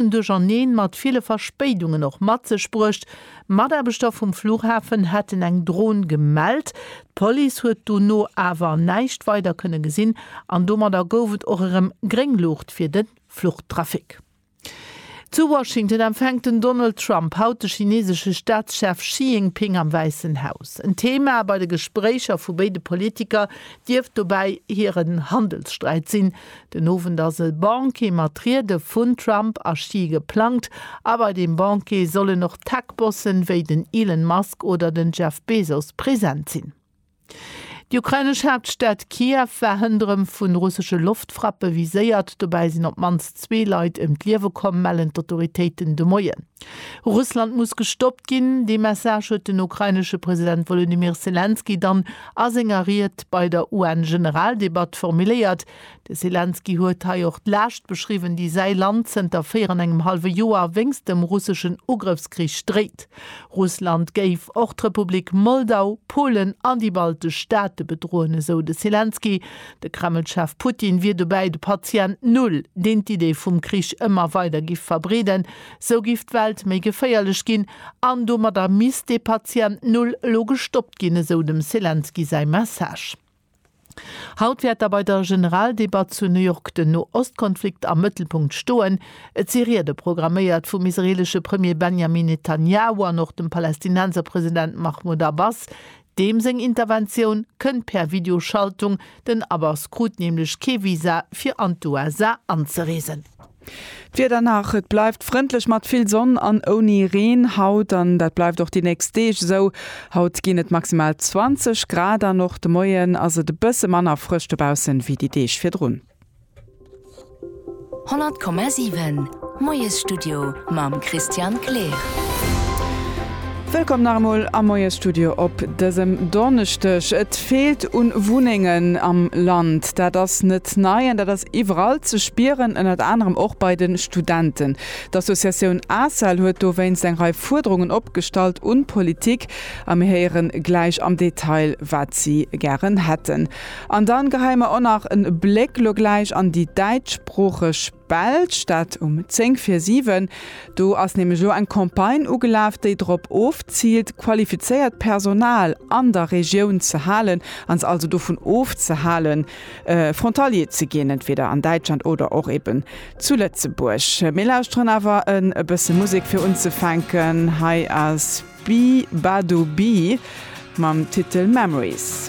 Aarbechten duercherneen mat ville Verspéidungen och mat sech bruecht. Mataarbechter vum Flughafen hätten eng Dron gemellt. D'Police huet dono awer näischt weider kënne gesinn an domadder gouf et och erëm gréng Luucht fir de Fluchtrafic. Zu Washington empfänkt den Donald Trump haut de chinesesche Staatschef Xi Jinping am Wäissen Haus. En Thema bei de Gespréicher vu béide Politiker dierft dobäi hiren Handelssträit sinn. Den Owend ass e Banquet mat Riede vun Trump a Xi geplangt a bei deem Banquet sollen och Tech-Bossen wéi den Elon Musk oder den Jeff Bezos present sinn. Déi ukrainesch Haaptstad Kiew war hënderëm vu russesche Loftfrappe viséiert. Dobäi sinn op d'mannst zwee Leit ëm d'Liewe komm, mellen d'Autoritéiten de Moien. Russland muss gestoppt ginn, dee Message huet den ukrainesche President Wolodymyr Selenskyj dann a senger Ried bei der UN-Generaldebatt formuléiert. De Selenskyj huet hei och d'Laascht beschriwwen, déi säi Land zënter véier an engem hallwe Joer wéinst dem russeschen Ugrëffskrich dréit. Russland géif och d'Republik Moldau, Polen an déi baltesch Staate bedroen, esou de Selenskyj. De Kreml-Chef Putin wier dobäi de Patient Null, deen d'Idee vum Krich ëmmer weider giff verbreeden. Sou giff d'Welt méi geféierlech ginn an domadder misst dee Patient Null elo gestoppt ginn, esou dem Selenskyj säi Message. Haut wäert da bei der Generaldebatt zu New York den No-Ost-Konflikt am Mëttelpunkt stoen. Et si Riede programméiert vum israeelesche Premier Benjamin Netanjahu an och dem Palästinenser President Mahmoud Abbas, Deem seng Interventioun kënnt per Videoschaltung, den Abbas krut nämlech kee Visa fir an d'USA anzereesen. D'Wieder nach, Et bleift frëndlech mat vill Sonn an ouni Reen haut an dat bleift och déi nächst Deeg esou. Haut ginn et maximal 20 Grad an och de Moien ass et e bësse manner frësch dobaussen wéi déi Deeg virdrun. 100,7 Moiesstudio mam Christian Kleer. Wëllkomm nach emol am Moiesstudio op dësem Donneschdeg. Et feelt u Wunnengen am Land. Dat ass net nei an dat ass iwwerall ze spieren, ënnert anerem och bei de Studenten. D'Associatioun ACEL huet dowéinst eng Rei Fuerderungen opgestallt un d'Politik a mir héieren gläich am Detail wat si gären hätten. An dann geheien mer och nach en Bléck lo gläich an déi däitschsproocheg Belsch, dat um 10 vir 7. Do ass nämlech lo eng Campagne ugelaf, déi drop ofziilt, qualifizéiert Personal an der Regioun ze halen an se also dovun ofzehalen, Frontalier ze ginn, entweder an Däitschland oder och eben zu Lëtzebuerg. Mir lauschteren awer e bësse Musek fir unzefänken. Hei ass Bee Ba Do Bee mam Titel Memories.